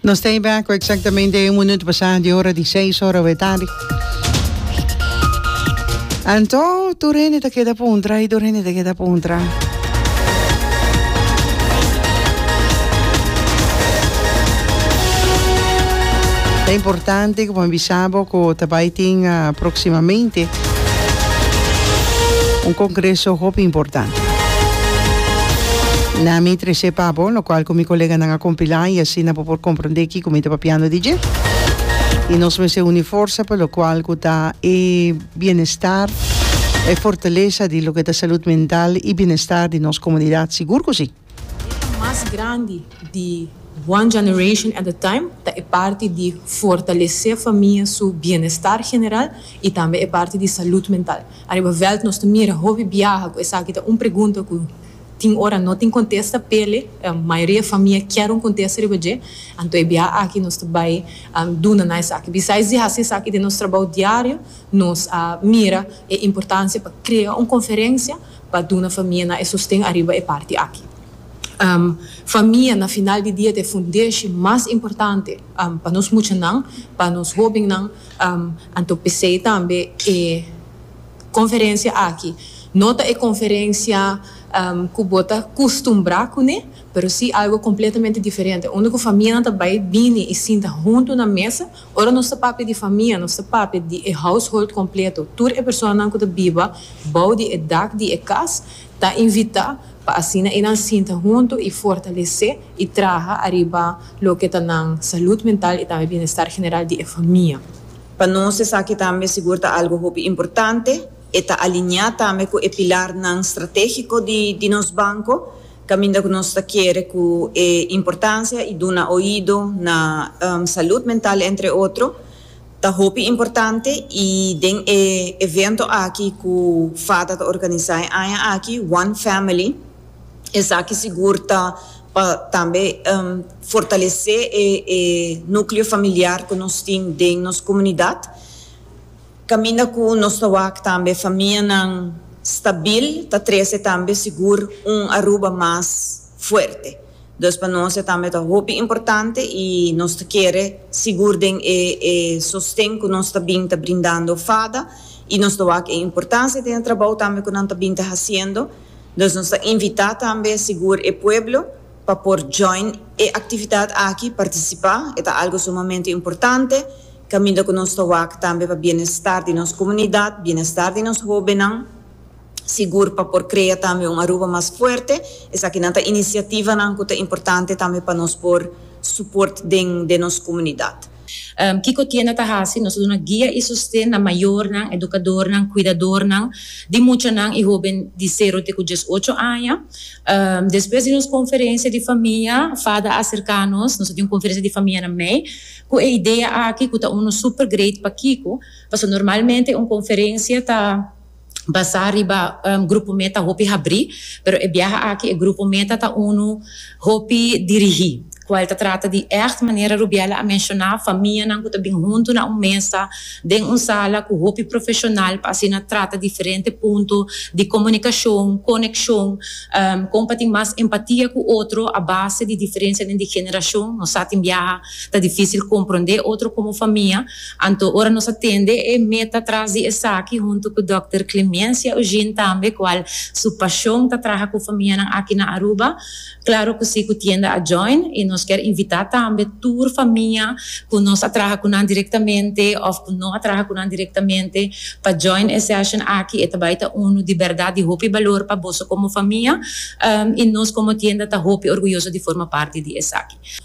Nos ta back cu exactamente un minuto pasado de hora di seis hora de tarde. Anto, tu rende te queda puntra y tu rende te queda puntra. Es importante que vos avisamos que te va a próximamente. Un congreso hopi importante. Na mi trece pa bo, locual cu mi coleganan a compila y asina bo por comprende kico mi ta papiando di dje. Y nos mester uni forsa pa locual cu ta e bienestar, e fortaleza di loke ta salud mental y bienestar di nos comunidad, sigur cu si. E ta mas grandi di one generation at a time ta e parti di fortalesé famia su bienestar general i tambe e parti di salud mental. Ariba veld nos ta mira hopi biaha ku esaki ta un pregunta ku tin ora no tin kontesta p'e mayoria famia kier un kontesta riba dje. Anto e biaha aki nos ta bai duna na esaki. Bisais di hasi esaki den nos trabou diario nos a mira e importansia pa krea un konferensia. pa duna famianan e sosten ariba e parti aki. Famia na final di dia ta e fundeshi mas importante pa nos muchanan, pa nos hobennan, anto p'esei tambe e konferensia aki no ta e konferensia ku bo ta kustumbrá kuné, pero si algu kompletamente diferente, unda ku famianan ta bai bini i sinta huntu na mesa Ora nos ta papia di famia, nos ta papia di e household completo. Tur e personanan cu ta biba bou di e dak di e cas ta invita pa asina enan sinta hunto y fortalece y traha ariba loke ta nan salud mental y tambe bienestar general di e famia. Pa nos esaki tambe sigur ta algo hopi importante. E ta alinea tambe cu e pilarnan strategico di nos banco, Caminda cu nos ta kere cu e importancia y duna oido na salud mental entre otro ta hopi importante y den e evento aki cu FADA ta organiza e aña aki One Family esaki sigur ta pa tambe fortalece e nucleo familiar cu nos tin den nos comunidad. Kaminda ku nos ta wak tambe famianan stabil ta trese tambe sigur un Aruba mas fuerte. Dus pa nos e tambe ta hopi importante i nos ta kere sigur den e e sosten ku nos ta bin ta brindando fada i nos ta wak e importansia den e trabou tambe ku nan ta bin ta hasiendo. Dus nos ta invita tambe sigur e pueblo Pa por join e actividad aki, participa, e ta algo sumamente importante, caminda cu nos ta wak tambe pa bienestar di nos comunidad, bienestar di nos hobennan, sigur pa por crea tambe un Aruba mas fuerte. Esaki nan ta iniciativanan cu ta importante tambe pa nos por support den nos comunidad. Kiko tienda ta hasi? Nos ta duna guia i sosten na mayornan, edukadornan, kuidadornan di muchanan i hoben di sero te ku dies ocho aña. Despues di nos konferensia di famia, Fada a serká nos, nos a tin un konferensia di famia na mei, ku e idea aki ku ta unu super great pa Kiko, pasobra normalmente un konferensia ta. basá riba grupo meta hopi habrí, pero e biaha aki e grupo meta ta unu hopi dirigí, kual ta trata di ègt, manera Rubiela a menshoná, famianan ku ta bin huntu na un mesa den un sala ku hopi profeshonal pa asina trata diferente punto di komunikashon, konekshon, kon pa tin mas empatia ku otro a base di diferensianan di generashon. Nos sa tin biaha ta difísil komprondé otro komo famia. Anto ora nos a tende e meta tras di esaki huntu ku dòkter Clemencia Eugene tambe kual su pashon ta traha ku famianan aki na Aruba, klaro ku si ku tienda a join i nos kier invitá tambe tur famia ku nos a traha ku nan direktamente òf ku no a traha ku nan direktamente pa join e sèshon aki e ta bai ta unu di bèrdat di hopi balor pa boso komo famia i nos komo tienda ta hopi orguyoso di forma parti di esaki.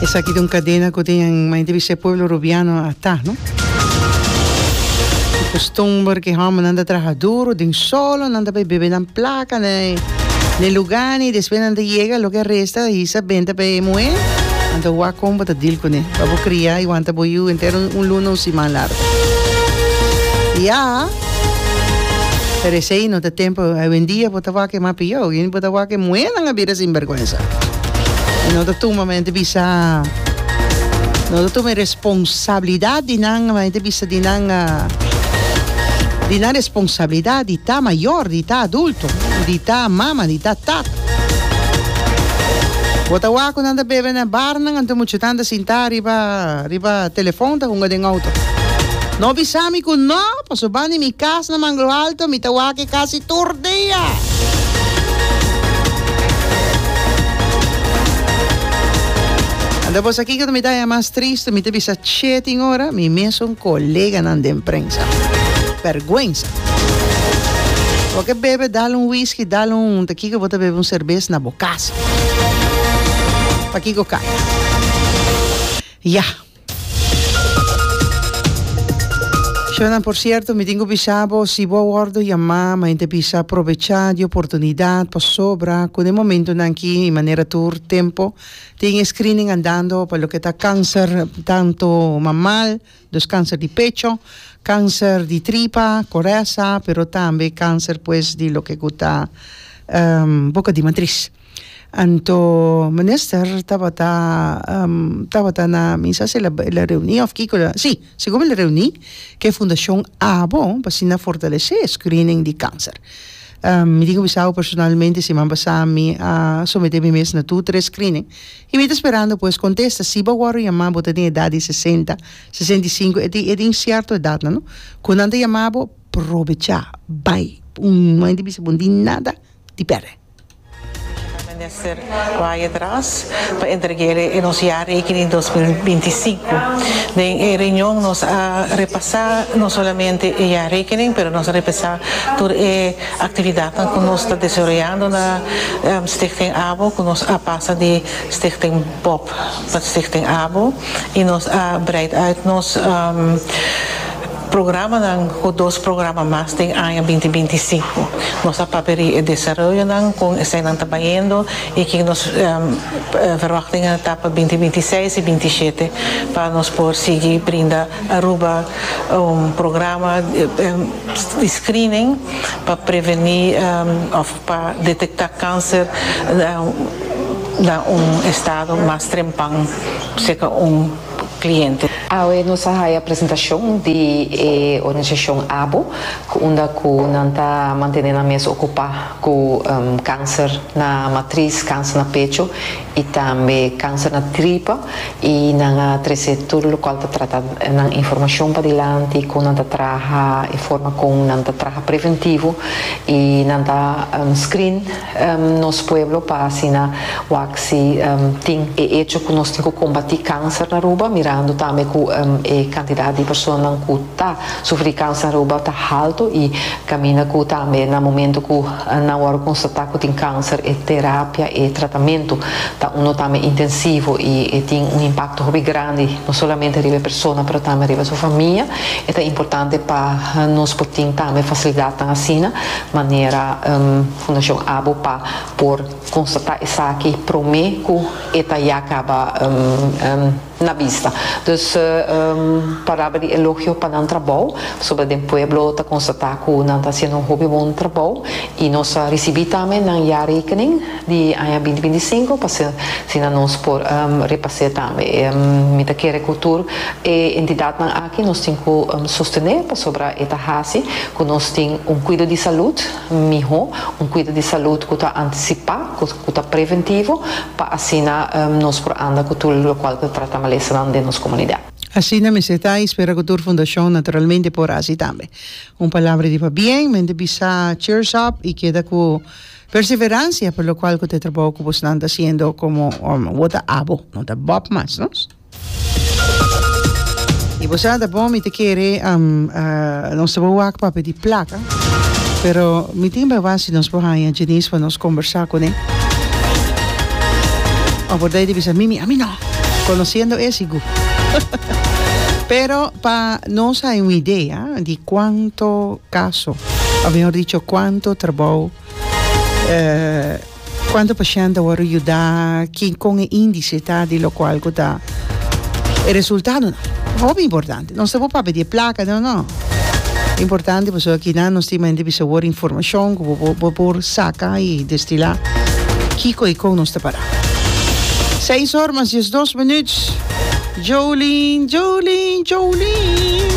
Esaki ta un cadena cu den un maya di bisha pueblo Rubiano a ta, no. Di costumber cu e hombernan ta traha duro den solo, nan ta bay bebe nan placa na e luganan y despues nan ta yega loke a resta a hisa benta pa e muher, nan ta wak con bo ta deal cune pa bo cria y wanta bo yiu entero un luna, un siman largo. Ya. Pero esei no ta tempo awendia bo ta wak e mapiou awen bo ta wak e muhernan a bira sinbergwensa y no ta tuma men ta bisa no ta tuma e responsabilidad di nan men ta bisa di nan di nan responsabilidad di ta mayor di ta adulto di ta mama di ta tata bo ta wak cu nan ta bebe na barnan anto muchanan ta sinta ariba Riba telefon ta hunga den auto. No bisa mi cu no, paso ban di mi cas na Manglo Alto mi ta wak e casi tur dia. Anda bo sa kiko ta mi daya mas triste, mi ta bisa che tin ora mi mesun coleganan den prensa. Berguensa. Bo ke bebe dal un whisky, dal un, ta kiko bo ta bebe un serbes na. Casa. Pakico caya? Ya. Shownan por cierto mi tin cu bisa bo si bo a wordo yama mayen ta bisa probecha di oportunidad pasobra cu den momentonan aki y manera tur tempo tin e screening andando pa loke ta cancer tanto mamal Dus kanser di pecho, kanser di tripa, koresa, pero tambe kanser pues di loke ku ta boka di matris. Anto minister tabata tabata na mi sa si el a el a reuní òf kiko el a si segun mi el a reuní ku e fundashon abo pa asina fortalesé e screening di kanser. Mi tin ku bisa bo personalmente siman pasá mi a someté mi mes na tur tres screening I mi ta sperando bo es contesta, si bo worde yama bo ta den edad di sesenta, sesenta i sinku, e tin e tin cierto edad nan no, cu nan ta yama bo, probecha, bay, un moment di bisa bo no tin nada di perde. Special Minister Ryan Dras pa entrega e nos jaarrekening dos mil binti i sinku. Den e reunion nos a repasa no solamente e jaarrekening pero nos a repasa tur e Actividadnan cu nos ta desaroyando na Stichting Abo cu nos a pasa di Stichting Bob pa Stichting Abo y nos a breid uit nos programanan cu dos programa mas den aña binti binti sinku. Nos a paperi e desaroyonan, con esai nan ta bayendo y kin nos verwachtingan ta pa binti binti seis y binti shete pa nos por sigui brinda Aruba un programa. di screening pa preveni of pa detecta cancer na un estado mas trempan seca un cliente. Awe nos a haya presentacion di e organisacion abo cu unda cu nan ta mantene nan mes ocupa cu cancer na matriz, cancer na pecho y tambe cáncer na tripa y nan a trece tur locual ta trata nan informacion padilanti con nan ta traha y forma con nan ta traha preventivo y nan ta screen nos pueblo pa asina wak si tin e hecho cu nos tin cu combati cáncer na Aruba mirando tambe cu e cantidad di personanan cu Ta, su frikans aruba ta haltu i kaminda ku tambe na momentu ku nan wòrdu konstatá ku tin kanser e terapia, e tratamentu ta unu tambe intensivo i e tin un impakto hopi grandi no solamente riba e persona pero tambe riba su famia. E ta importante pa nos por tin tambe fasilidatnan asina manera Fundashon Abo pa por konstatá esaki promé ku e ta ya kaba. na bista dus paraba di elogio pa nan trabou sobra den pueblo ta constata cu nan ta haciendo un hopi bon trabou y nos a ricibi tambe nan jaarrekening di aña binti binti singco pa asina nos por repase tambe y mi ta kere cu tur e entidadnan aki nos tin cu sostene pasobra e ta haci cu nos tin un cuido di salud Miho, un cuido di salud cu ta anticipa, cu ta preventivo, pa asina nos por anda cu tur locual cu ta trata malesanan den nos comunidad. Asina mester ta y spera cu tur fundacion naturalmente por haci tambe. Un palabra di pabien, mente bisa cheers up y keda cu perseverancia pa locual cu ta e trabao cu bosnan ta haciendo como word ta abo, no ta bob mas nos. Y bo sa ta bon mi ta kere nos ta bo wak papia di placa pero mi tin bay wak si nos por haya Denise pa nos conversa con e a borda e ta bisa mimi ami no conociendo e si gu pero pa nos hay un idea di cuanto caso o mejor dicho cuanto trabao Cuanto paciente a worde yuda? Kin con e indice ta di locual cu ta e resultadonan? Hopi importante. Nos ta por papia di e placa? No, no. Importante pasobra aki nan nos tin mente bisa worde informacion cu bo, bo por saca y destila kico y con nos ta para. Seis or mas diesdos minuut. Jolin, Jolin, Jolin.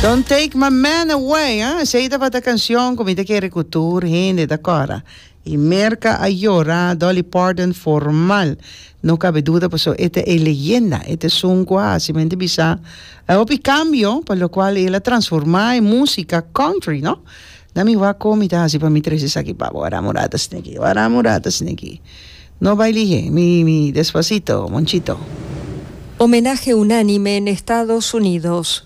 Don't take my man away, eh. Esei tabata canción cu mi ta kere cu tur hende ta cora. Y Merca a yora, Dolly Parton formal. No cabe duda paso e ta e leyenda, e ta e sun cu a haci mente bisa e hopi cambio pa locual el a transforma e musica country, no? Na mi wak con mi ta haci pa mi tres esaki pabo, wara murata sneki, wara murata sneki. No bay lihe, mi, mi, Despacito, Monchito. Homenaje unánime n'Estados Unidos.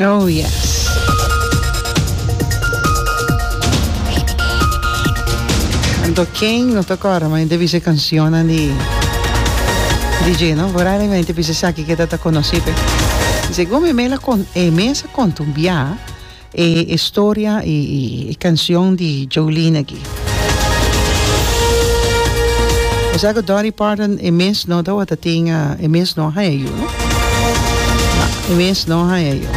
Oh yes. Anto ken no ta kòrda man ente bisa e kansionnan di DJ no por ahí man ente bisa esaki ke ta ta konosí pe y segun mi mel a kon e mes a kontumbiá e historia y e kansion di Jolene aki. Osea cu Dolly Parton e mes no tawata tin, e mes no haña yu. No, e mes no haña yu.